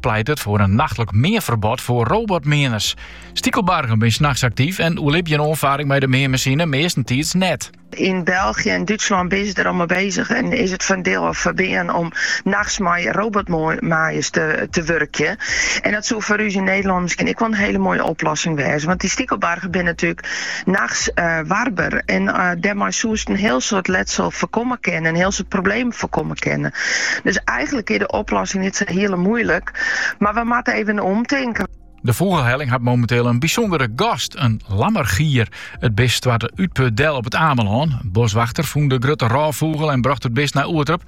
pleitet foar in nachtlik meanferbod foar robotmeaners. Stikelbargen binne nachts aktyf en oerlibje in oanfaring mei de meanmasine meastentiids net. Yn Belgje en Dútslân binne se der al mei bezich en is it foar in diel al ferbean om nachts mei robotmaaiers te wurkjen. En dat soe foar ús yn Nederlân miskien ek wol in hiele moaie oplossing wêze, want dy stikelbargen binne natuerlik Nachts warber en dêrmei soest in hiel soad letsel foarkomme kinne, in hiel soad problemen foarkomme kinne. Dus eigenlik is de oplossing net sa hiele moeilik, mar we moatte even omtinken. De Fûgelhelling hat momenteel in bysûndere gast, in lammergier. It bist stoarte útput del op it Amelân. Boskwachter fûn de grutte rôffûgel en brocht it bist nei Oerterp.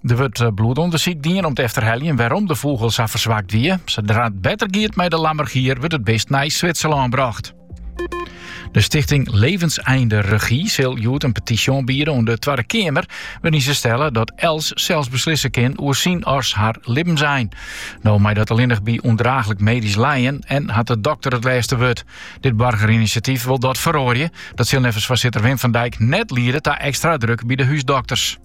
Der wurdt eh, bloedûndersyk dien om te efterheljen wêrom de fûgel sa ferswakt wie. Sadra it better giet mei de lammergier wurdt it bist nei Switserlân brocht. De stichting Levenseinderegie sil hjoed in petysje oanbiede oan de Twadde Keamer, wêryn't se stelle dat elts sels beslisse kin oer syn as har libbensein. No mei dat allinnich by ûndraachlik medysk lijen en hat de dokter it lêste wurd. Dit boargerinisjatyf wol dat feroarje. Dat sil neffens foarsitter Wim van Dijk net liede ta ekstra druk by de húsdokters.